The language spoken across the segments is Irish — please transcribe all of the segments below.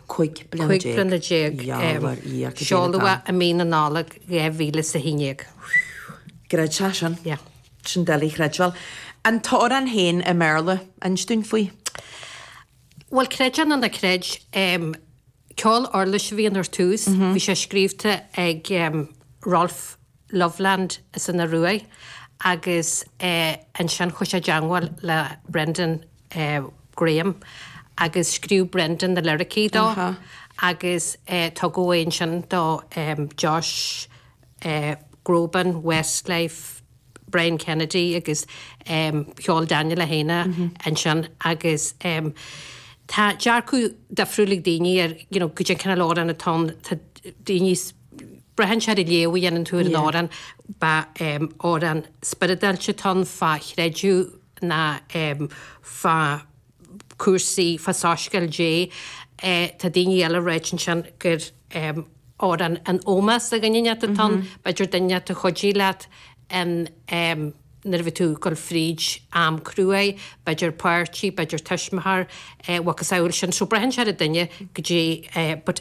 Cúig bliana déag seoladh i mí na Nollag dhá mhíle is a h-aon déag. Creid é sin. Sin doiligh a chreidbheáil. An t-amhrán féin i mBéarla, inse dúinn faoi. Bhuel, creid é nó ná creid, ceol uirlise a bhí ann ar dtús. Bhí sé scríobhte ag Rolf Løvland san Ioruaidh agus annsin chuir sé i dteangmháil le Brendan Graham agus scríobh Brendan na liricí dó agus tugadh é annsin do Josh Groban, Westlife, Brian Kennedy agus cheol Daniel é féin é annsin agus tá dearcadh difriúil ag daoine ar you know, goidé an cineál amhrán atá ann tá daoine braitheann sé ar an léamh a dhéanann tú ar an amhrán. B'é amhrán spioradálta atá ann fá chreideamh ná fá chúrsaí, fá Soiscéal Dé. Tá daoine eile ag ráit ansin gur amhrán in ómós do dhuine inteacht atá ann. B'fhéidir duine inteacht a chuidigh leat nuair a bhí tú ag dul fríd am cruaidh, b'fhéidir páirtí, b'fhéidir tuismitheoir, mhacasamhail sin. So braitheann sé ar an duine goidé but.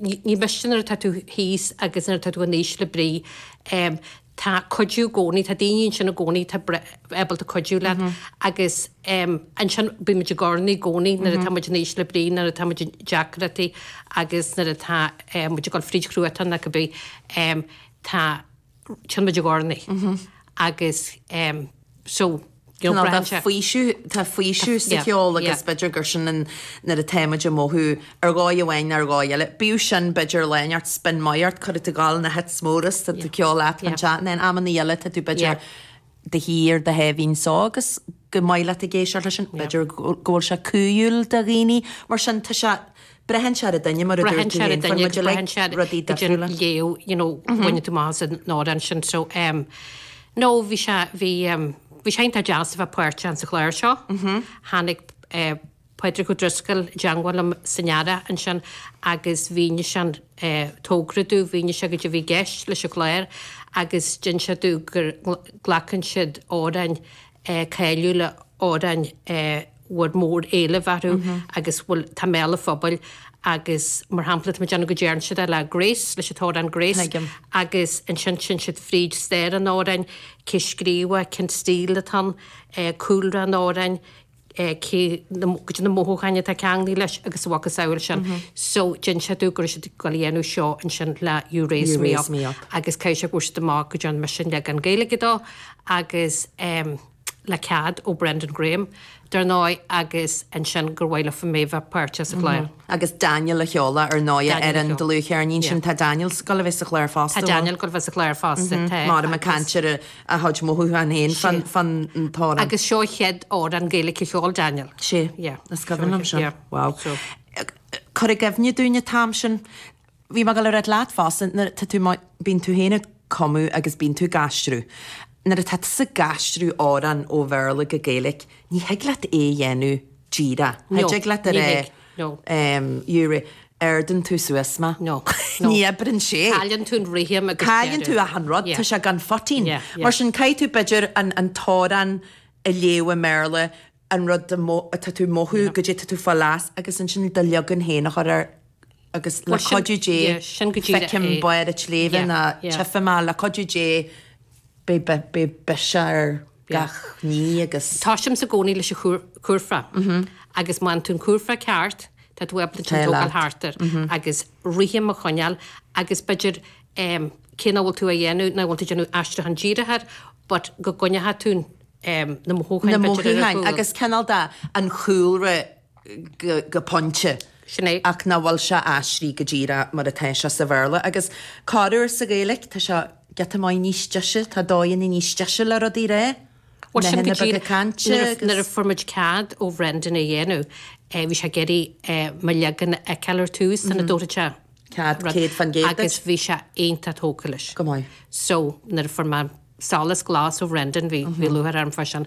Ní miste nuair atá tú thíos agus nuair atá tú in ísle brí. Tá cuidiú i gcónaí, tá daoine ansin i gcónaí atá ábalta cuidiú leat. Agus ansin bímid ag urnaí i gcónaí nuair atá muid in ísle brí, nuair atá muid i ndeacrachtaí agus nuair atá muid ag dul fríd chruatan ar bith. Tá. téann muid ag urnaí agus em so you know braitheann sé. faoiseamh tá faoiseamh sa cheol agus b'fhéidir gur sin an nuair a tá muid ag mothú ar dhóigh amháin nó ar dhóigh eile bíodh sin b'fhéidir lionn ort spion maith ort cuirfidh tú ag gabháil na hits móra sa cheol leat an chat and then amanna eile tá tú b'fhéidir do shuí ar do sháimhín só agus gur maith leat ag éisteacht leis sin. B'fhéidir go bhfuil sé cumhúil do dhaoine mar sin tá sé, braitheann sé ar an duine mar a dúirt tú fhéin, faigheann muid uilig rudaí difriúla. Braitheann sé ar an duine, goidé an léamh, you know, a bhaineann tú amach as an amhrán ansin so em nó bhí sé, bhí em, bhí sé iontach deas a bheith páirteach sa chlár seo, tháinig eh, Pádraig Ó Drisceoil i dteangmháil liom san earrach ansin agus mhínigh sé an tógra domh, mhínigh sé goidé bhí gceist leis an chlár agus d'inis sé domh gur glacann siad amhráin cáiliúla, amhráin a bhfuair mór éileamh orthu agus atá i mbéal an phobail agus mar shampla tá muid déanamh go ndearn siad é le Grace, leis an t-amhrán Grace agus ansin théann siad fríd stair an amhráin, cé a scríobh é, cén stíl atá ann, cúlra an amhráin. cé na, caidé na mothúcháin atá ceanglaithe leis agus a mhacasamhail sin. So, d'inis siad domh go raibh siad ag dul a dhéanamh seo ansin le You Raise Me Up agus caithfidh sé go bhfuair siad amach go dtearn mise an leagan Gaeilge dó agus ehm le cead ó Brendan Graham dar ndóigh agus ansin gur mhaith leofa mé bheith páirteach sa chlár. Agus Daniel a cheol é ar ndóigh ar an dlúthcheirnín sin. Tá Daniel sa, ag dul a bheith sa chlár fosta. Tá Daniel ag dul a bheith sa chlár fosta, tá. Máire McCann, a chuid mothúchán féin fán amhrán. Agus seo an chéad amhrán Gaeilice a cheol Daniel. Sé. Yeah. Is cuimhin liom seo. Yeah. Wow. So. Cuir i gcuimhne dúinn an t-am sin. Bhí mé ag dul a ráit leat fosta nuair tá tú mar bíonn tú féin ag cumadh agus bíonn tú ag aistriú. Nuair atá tú ag aistriú amhrán ó Bhéarla go Gaeilic ní thig leat é a dhéanamh díreach. Ní thig leat a rá. No. You raise, ardaíonn tú suas mé. No. No. Ní oibríonn sé. Cailleann tú an rithim agus deireadh. Cailleann tú achan rud. Tá sé gan phoitin. Mar sin caithfidh tú b'fhéidir an t-amhrán a léamh i mBéarla, an rud atá tú a mhothú, caidé atá tú ag fáil as, agus ansin do leagan féin a chur air agus le cuidiú Dé feicim barr an tsléibhe nó tchífidh mé, le cuidiú Dé. Beidh beidh beidh biseach air gach ní agus. Toisímse i gcónaí leis an curfá agus má fhaigheann tú an curfá ceart tá tú ábalta ansin tógáil thart air agus rithim a choinneáil agus b'fhéidir cé nach bhfuil tú á dhéanamh nach bhfuil tú ag déanamh aistriúchán díreach air but go gcoinneochadh tú na mothúcháin b'fhéidir ar a chúl. Na mothúcháin agus cineál de an chúlra go pointe. Sin é. Ach nach bhfuil sé aistrithe go díreach mar atá sé sa Bhéarla. Agus corruair sa Ghaeilge tá sé giota maith níos deise, tá dóigheanna níos deise le rudaí a rá, nathanna beaga cainte agus. Nuair a fuair muid cead ó Bhrendan é a dhéanamh, bhí sé ag iarraidh mo leagan a fheiceáil ar dtús, sula dtabharfadh sé cead céad fan gcéad duit. Agus bhí sé iontach tógtha leis. Go maith. So, nuair a fuair mé solas glas ó Bhrendan, bhí lúcháir orm fá sin.